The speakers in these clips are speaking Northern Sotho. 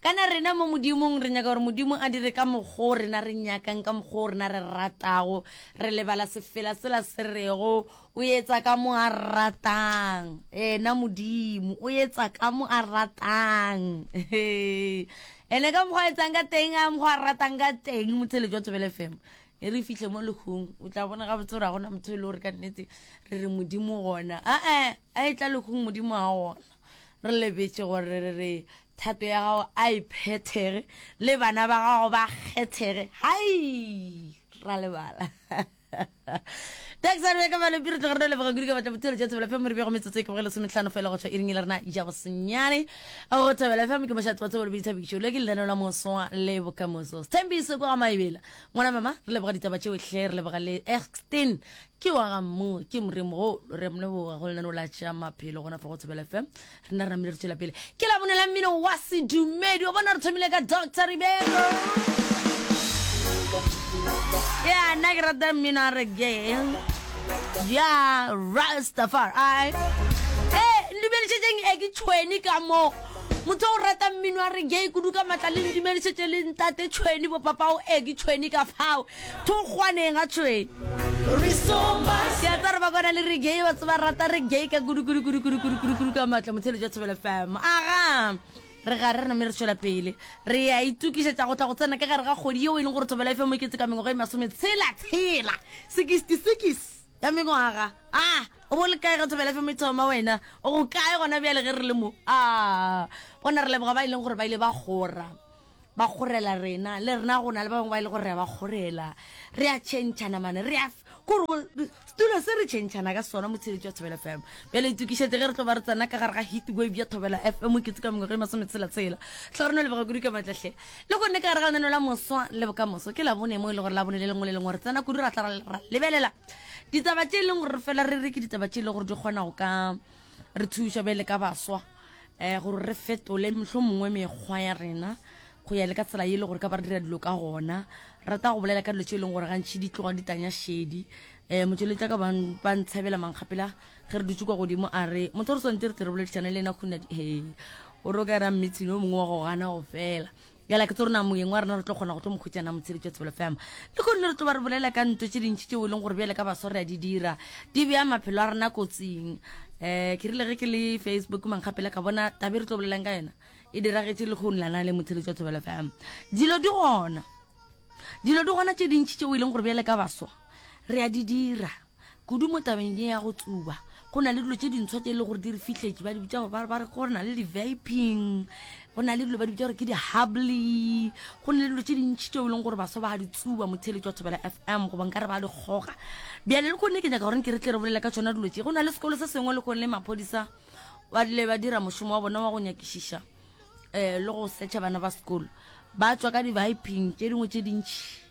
Kana rena mo Modimong re nyaka gore Modimo a dire ka mokgwa o rena re nyakang, ka mokgwa o rena re ratago, re lebala sefela sela se rego, O etsa ka mo a ratang. Ena Modimo, O etsa ka mo a ratang. Ene ka mokgwa a etsang ka teng, ka mokgwa a ratang ka teng, motheletši wa Thobela FM. E re fihle mo lehung, o tla bona gabotse gore ga gona motho e le gore ka nnete re re Modimo gona. A-e, a e tla lehung Modimo a gona. re lebetše gore re re thato ya gago a e phethege le bana ba gago ba kgethege hai ra lebala taxare ka bale piro tlogore le bagodi ka batla botshelo jwa thobela family bego metsotso e ke bogele sometlhano fela go tswa iring le rena ja bosenyane go thobela family ke moshatsi wa tsebolo bitsa bikišo le ke lenano la moswa le bokamoso stembiso kwa ga maebela ngwana mama re leboga ditaba tšeotlhe re leboga le extin ke wa ga mmu ke moremogolo re moleboga go lenaneo la tšea maphelo gona fa go tshebela fm re na re namile re tswela pele ke la bonela mmino wa sedumedi wa bona re thomile ka doctor ribelo ya nna ke rata mmino a re ke ya rastafar i e ndumedišetseng e ke tšhweni ka moo motho o rata mmino a re gay kudu ka maatla le ndumedišetse le ntate tšhweni bopapao e ke tšhweni ka fao Thokgwaneng a tšhoe. Ke a tsara ba kwana le reggae ba tseba rata reggae ka kudu kudu kudu kudu kudu kudu kudu ka matla motshelo ja tshobela fam aga re ga re name re tšwela pele re ya itukišetša go tla go tsena ka gare ga kgodi yeo e leng gore thobela e fm e ketse ka mengwaga e masome tshela tshela sekisiti sekis ya mengwaga a o bo le kae ga thobela fm e thoma wena o go kae gona bjale ge re le mo a gona re leboga ba e leng gore ba ile ba gora ba kgorela rena le rena go na le ba bangwe ba e le gore re a ba kgorela re a tšhentšhana mane re a kore setulo se re tšhentšhana ka sona motshebetsi wa thobela fm bjale itokišetse ge re tlo ba re tsena ka gare ga hit wave ya thobela fm ke tse ka mengwaga e masome tshela tshela tla re no lebega kudu ka matlahle le gonne ka gare ga lenano la moswa le bokamoso ke labone mo e le gore labone le lengwe le lengwe re tsena kudu ra tla ra lebelela ditaba tše e leng gore re fela re re ke ditaba tše e le gore di kgona go ka re thuša bele ka baswa um gore re fetole mohlho mongwe mekgwa ya rena go ya le ka tsela ye e le gore ka ba re dira dilo ka gona rata go bolela ka dilo tse e leng gore gantšhi di tloga di tanya šedi um motšweletša ka ba ntshabela mankgapela ge re dutse kwa godimo a re motho re swantse re tle re boledišane le ena khunadi he o re o ka era mmitshine o mongwe wa go gana go fela Bjale ke tse rona moyeng wa rena re tlo kgona go tlo mokgwetsa na motshebetsi wa Tsebelo FM. Le kgone re tlo ba re bolela ka nto tše dintši tšeo e leng gore bjale ka baso re a di dira. Di bea maphelo a rena kotsing. Eh, ke rile ge ke le Facebook mankgapela ka bona tabe re tlo bolelang ka yona. E diragetše le kgone lana le motshebetsi wa Tsebelo FM. Dilo di gona. Dilo di gona tše dintši tšeo e leng gore bjale ka baso re a di dira. Kudu mo tabeng ye ya go tsuba, go na le dilo tše dintsho tše e le gore di re fihletše, ba di bitša gore ba re gore na le di-vaping, go na le dilo ba di bitša gore ke di-hubly, go na le dilo tše dintšhi tšeo e leng gore baswa ba di tsuba mo theletšo ya Thobela FM goba nka re ba di kgoga. Bjale le kone ke nyaka gore nke re tle re bolele ka tšona dilo tše. Go na le sekolo se sengwe le kone maphodisa ba rile ba dira mošomo wa bona wa go nyakišiša um le go search-a bana ba sekolo, ba tšwa ka di-vaping tše dingwe tše dintšhi.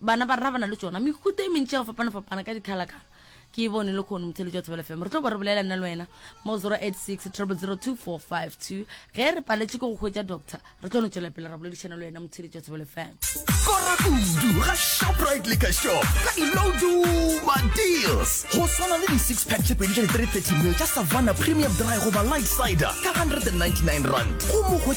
Bana ba rena ba na le tšona mehuta e mentši ya go fapana-fapana ka dikgalakgala. Ke e bone le kgono motheletši wa Thobela FM. Re tlo ba re bolela nna le wena mo 086 002452. Ge re paletše ke go hwetša doctor, re tlo no tšwela pele ra boledišana le wena motheletši wa Thobela FM. Kora kudu ga Shoprite Liquor Shop ka dilo duma deals go swana le di-six pack tše pedi tša di-330 mil tša Savannah Premium Dry goba Light Cider ka 199 rand go mo